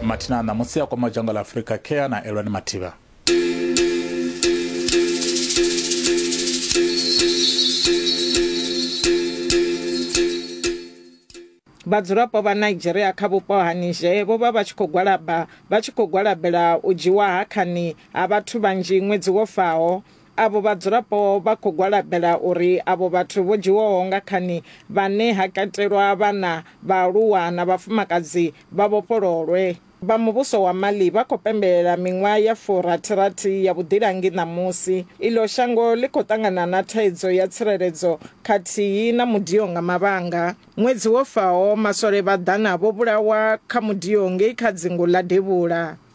mathina a ṋamusi a kwama dzhango ḽa afurika kea na elwani mathivha Vhadzulapo vha Nigeria kha vhupo ha Niger vho vha vha tshi khou gwalaba vha tshi khou gwalabela u dzhiwa ha khani ha vhathu vhanzhi ṅwedzi wo faho Avho vhadzulapo vha khou gwalabela uri avho vhathu vho dzhiwaho nga khani, vhane ha katelwa vhana, vhaaluwa na vhafumakadzi, vha vhofhololwe. Vha muvhuso wa Mali vha khou pembelela miṅwaha ya furathi-rathi ya vhuḓilangi ṋamusi. Iḽo shango ḽi khou ṱangana na thaidzo ya tsireledzo khathihi na mudio nga mavhanga. Ṅwedzi wo faho, maswole vha ḓana vho vhulawa kha mudio ngei kha dzingu ḽa Devhula.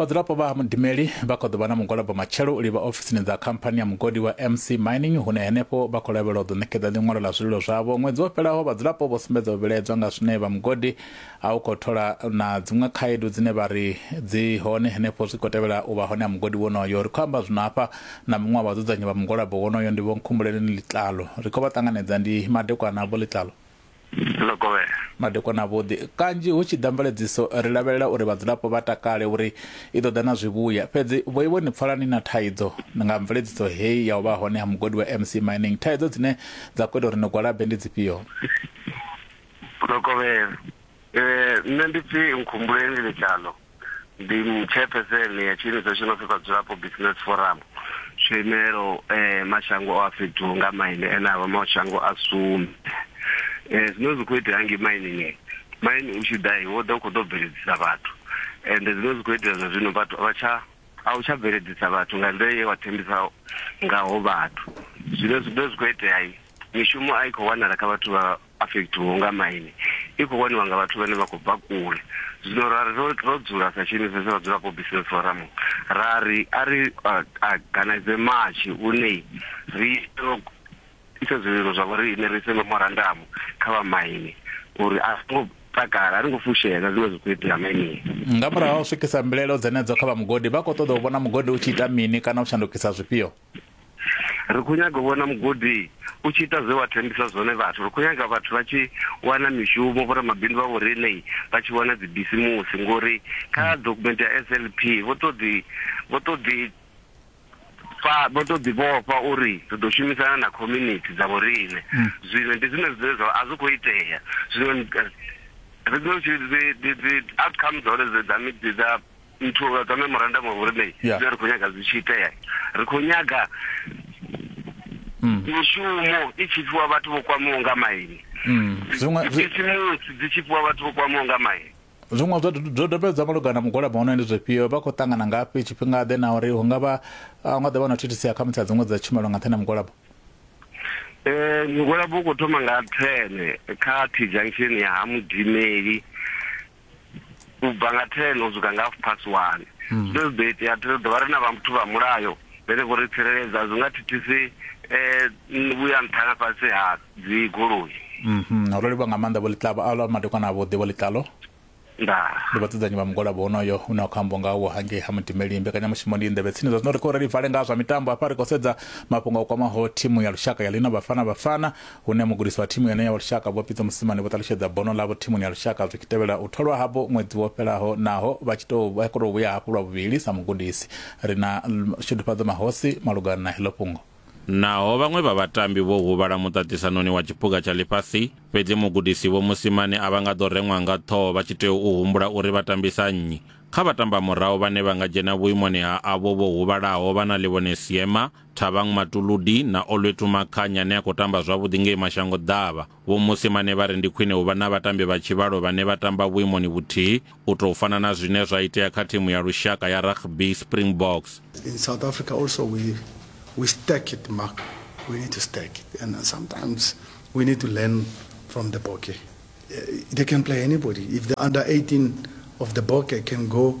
vhadzulapo vha ha mudimeli vha khou ḓo vha na mugwalabo matshelo u livha ofisini dza khamphani ya mugodi wa mc mining hune henefho vha khou lavhelwa u ḓo ṋekedza ḽiṅwalo ḽa zwililo zwavho ṅwedzi wo fhelaho vhadzulapo vho sumbedza u vhilaedzwa nga zwine vha mugodi a u khou thola na dziṅwe khaedu dzine vha ri dzi hone henefho zwi khou tevhela u vha hone ha mugodi wonoyo ri khou amba zwino hafha na muṅwe wa vhadzudzanyi vha mugwalabo wonoyo ndi vho nkhumbuleleni ḽitlalo ri khou vha ṱanganedza ndi madekwana vho ḽitlalo ḽo kovhela. Madekwana avhuḓi. Kanzhi hu tshi ḓa mveledziso ri lavhelela uri vhadzulapo vha takale uri i ḓo ḓa na zwivhuya. Fhedzi vhoiwe ni pfala ni na thaidzo nga mveledziso heyi ya u vha hone ha mugodi wa MC Mining. Thaidzo dzine dza khou ita uri ni gwalabe ndi dzifhio? Ḽo kovhela. Nṋe ndi pfi Nkhumbuleni Letshaḽo. ndi chairperson ya tshiimiswa tshi no pfi vhadzulapo business forum tsho imelaho um mashango a fhethu nga maine ane a vha mashango a sumbe um zwine zwi khou itea hangi mainini maine u tshi ḓa wo ḓa u khou ḓo bveledzisa vhathu ende zwine zwi khou itea zwa zwino vhathu vha tsha a u tsha bveledzisa vhathu nga nḓila ye wa thembisa ngaho vhathu zwine zwine zwi khou itea mishumo a i khou wanala kha vhathu vha Afekithiwa unga maine i khou waniwa nga vhathu vhane vha khou bva kule. Zwino ra ri ro ro dzula sa tshiimiswa tsha vhadzulapo Business Forum ra ri a ri a ganaize matshi une ri ro isa zwililo zwa vhori ine ri ise memorandamu kha vha maine uri a ri ngo takala a ri ngo fushea nga zwine zwa khou itea mainini. Nga murahu ha u swikisa mbilaelo dzenedzo kha vha mugodi vha khou ṱoḓa u vhona mugodi u tshi ita mini kana u shandukisa zwifhio? ri khou nyaga u vhona mugodi u tshi ita zwe wa thembisa zwone vhathu ri khou nyaga vhathu vha tshi wana mishumo vhoramabindu vha vhoriṋei vha tshi wana dzibisimusi ngori kha hmm. document ya s l p vho to ḓi vho to ḓi fa vho to ḓi vhofha uri ri ḓo shumisana na community dza vhoriṋe hmm. zwino ndi zwine zwine zwa a zwi khou itea zwino ri ḓo outcome dza hone dza dza nthu nga dza memorandum of rename yeah. dzine ri khou nyaga dzi tshi itea ri khou nyaga mm. mishumo i tshi fhiwa vhathu vho kwamiwa nga maini mm. zwiṅwe bisimusi dzi tshi fhiwa vhathu vho kwamiwa nga maini zwiṅwe zwo dobedzwa malugana mugwalabo hono ndi zwifhio vha khou ṱangana ngafhi tshifhinga ḓe na uri hu nga vha nga ḓa vha na thithisi ya khamusi ya dziṅwe dza tshumelo nga nṱhani ha mugwalabo eh mugwalabo u khou thoma nga 10 kha t junction ya ha mudimeli u bva nga 10 u swika nga half past 1. Hmm. Zwine zwi ḓo itea ri ḓo vha ri na vhathu vha mulayo vhene vho ri tsireledza zwi nga thithisi um vhuya nṱha na fhasi ha dzi goloi mhm. ro livha nga maanḓa vho ḽiṱlavo a lwa madekwana avhuḓi vho ḽiṱalo ndi vhadzudzanyi vha mugwalabo wonoyo u ne wa khou amba ngawo hangei ha mudimeli mbekanyamushumo ndi nḓevhe tsini zwa zwino ri khou reli vale nga zwa mitambo hafha ri khou sedza mafhungo a kwamaho thimu ya lushaka ya lino vhafana vhafana hune mugudisi wa thimu yeneyo wa lushaka Vho Pitso Mosimane vho ṱalutshedza bono ḽavho thimuni ya lushaka zwi tshi tevhela u tholwa havho ṅwedzi wo fhelaho naho vha tshi tou vha khou tou vhuya hafhu lwa vhuvhili sa mugudisi. Ri na Shudufhadzo Mahosi malugana na heḽo fhungo. Naho vhaṅwe vha vhatambi vho huvhala muṱaṱisanoni wa tshiphuga tsha ḽifhasi, fhedzi mugudisi Vho Mosimane a vha nga ḓo reṅwa nga ṱhoho vha tshi tea u humbula uri vha tambisa nnyi. Kha vhatambamurahu vhane vha nga dzhena vhuimoni ha avho vho huvhalaho vha na Ḽivhone Seema, Thabang Matuludi na Olwethu Makhanya ane a khou tamba zwavhuḓi ngei Mashango Ḓavha, Vho Mosimane vha ri ndi khwine u vha na vhatambi vha tshivhalo vhane vha tamba vhuimoni vhuthihi u tou fana na zwine zwa itea kha thimu ya lushaka ya rugby Springboks. In South Africa also we we stack it Mark. We need to stack it and sometimes we need to learn from the Bokke. Eh, they can play anybody. If the under 18 of the Bokke can go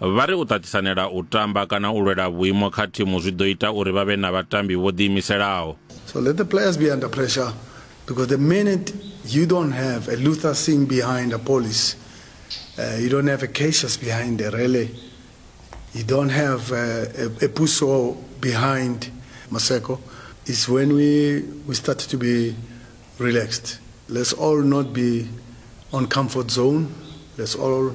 Vha ri u ṱaṱisanela u tamba kana u lwela vhuimo kha thimu zwi ḓo ita uri vha vhe na vhatambi vho ḓiimiselaho. So let the players be under pressure because the minute you don't have a Luther Singh behind a police, uh, you don't have a Cassius behind a rally, you don't have a, uh, a, a Puso behind Maseko, is when we, we start to be relaxed. Let's all not be on comfort zone. Let's all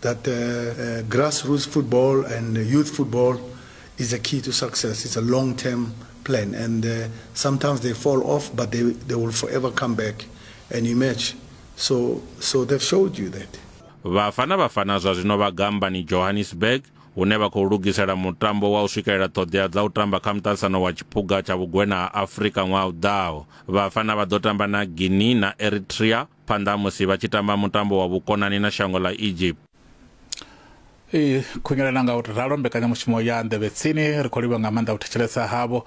that grassroots football and youth football is a key to success. It's a long term plan, and uh, sometimes they fall off, but they, they will forever come back and emerge. So, so they've showed you that. Bafana Bafana zwa zwino vha gambani Johannesburg hune vha khou lugisela mutambo wa u swikelela ṱhoḓea dza u tamba kha muṱaṱisano wa tshiphuga tsha vhugwena ha afurika ṅwaha u ḓaho vhafana vha ḓo tamba na guinea na eritrea phanḓa musi vha tshi tamba mutambo wa vhukonani na shango ḽa Egypt. I khunyelana nga u ralo mbekanyamushumo ya nḓevhe tsini ri khou livha nga maanḓa u thetshelesa havho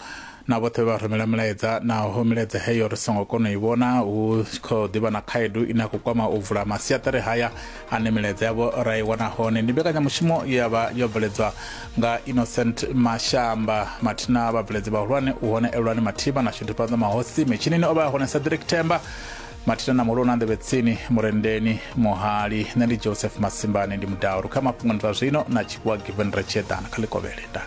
na vhoṱhe vha rumela milaedza naho milaedza heyo ri songo kona u i vhona hu khou ḓivha na khaedu ine ya khou kwama u vula masiaṱari haya ane milaedza yavho ra i wana hone ndi mbekanyamushumo ya vha yo bveledzwa nga innocent mashamba mathina vhabveledzi vhahulwane u hone elwani mathima na shudufhadzo mahosi mitshinini o vha a hone cedric themba mathina na mulona nḓevhe tsini murendeni muhali nṋe ndi joseph masimbani ndi mudauru kha mafhungo ndi zwa zwino na tshifhiwa given retsheḓana kha ḽikovhele nda